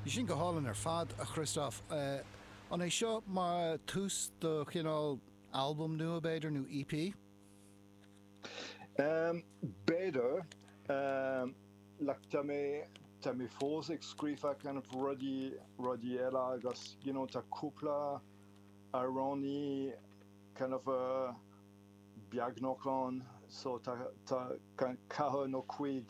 Bhí sin go hálainn ar fad, a Christoph. An é seo mar tús do chineál albam nua, b'fhéidir, nó EP? B'fhéidir. Tá mé tá mé fós ag scríobh kind of rudaí rudaí eile agus you know tá cúpla amhráin kind of beagnach ann so tá tá kind of ceathair nó cuig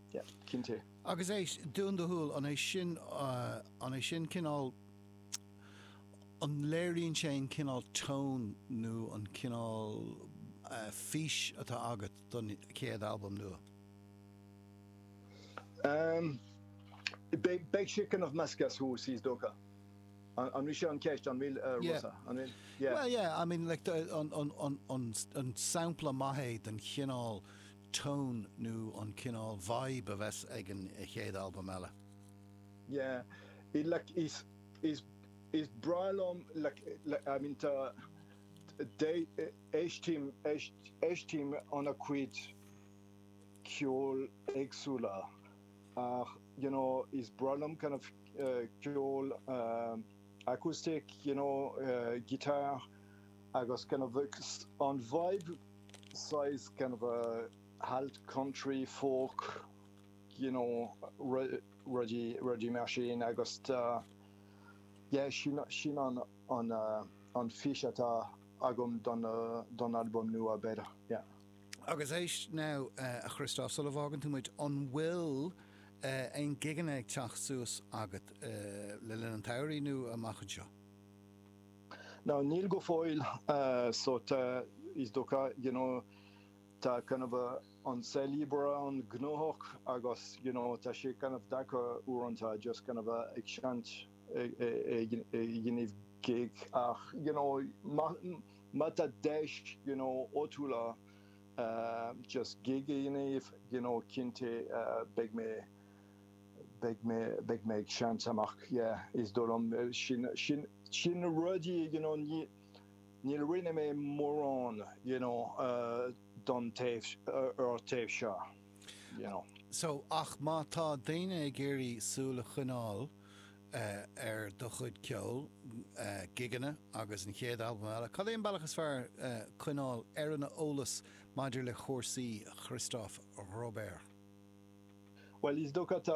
Yeah, cinnte. Agus é dún do shúil, an é sin, an é sin cineál, an léiríonn sé an cineál tone nó an cineál fís atá agat don chéad albam nua? Um, beidh, beidh sé cineál measctha as thuas, is dócha. An bhfuil sé an ceist an bhfuil uh, yeah. Rosa? An bhfuil? Yeah. Well, yeah, I mean, like, an, an, an, an, an sampla maith é den chineál tone nó an cineál vibe a bheas ag an chéad albam eile. Yeah it like is is is breá liom like like I mean tá de éistím éist éistím an-chuid ceoil éagsúla ach you know is breá liom kind of ceol acoustic you know guitar agus kind of an vibe saghas kind of alt country folk you know rudaí rudaí mar sin agus yeah sin sin an an an fís atá agam don don albam nua b'fhéidir yeah. Agus éist now a Christoph sula bhfágann tú muid an bhfuil aon gigeanna ag teacht suas agat le linn an tsamhraidh nó amach anseo? Now níl go fóill so tá is dócha you know tá kind of an saol oibre an-ghnóthach agus you know tá sé kind of deacair uaireanta just kind of ag seinnt ag déanamh gig ach you know má tá deis you know áitiúla just gig a dhéanamh you know cinnte beidh mé beidh mé ag seinnt amach yeah is dóigh liom sin sin sin na rudaí you know ní níor rinne mé mórán you know don taobh ar taobh seo you know. So ach má tá daoine ag iarraidh súil a choinneáil ar do chuid ceoil, gigeanna agus an chéad albam eile, cad é an bealach is fearr coinneáil ar an eolas maidir le chúrsaí Christoph Robert? Bhuel is dócha tá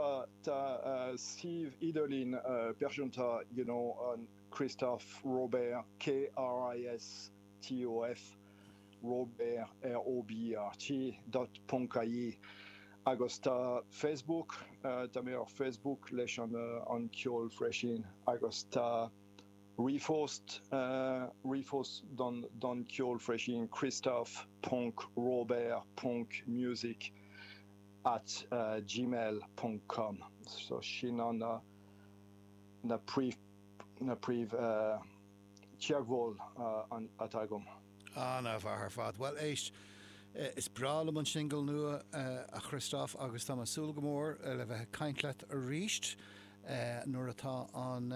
suíomh idirlín pearsanta you know an Christoph Robert KRISTOF Robert ROBERT dot ponc ie agus tá Facebook tá mé ar Facebook leis an an ceol freisin agus tá ríomhphost ríomhphost don don ceol freisin Christoph ponc Robert ponc music at gmail ponc com so sin ná na na príomh na príomh teagmháil atá agam. Ana-mhaith ar fad. Bhuel éist, is breá liom an singil nua a Christoph agus táim ag súil go mór le bheith ag caint leat arís nuair atá an.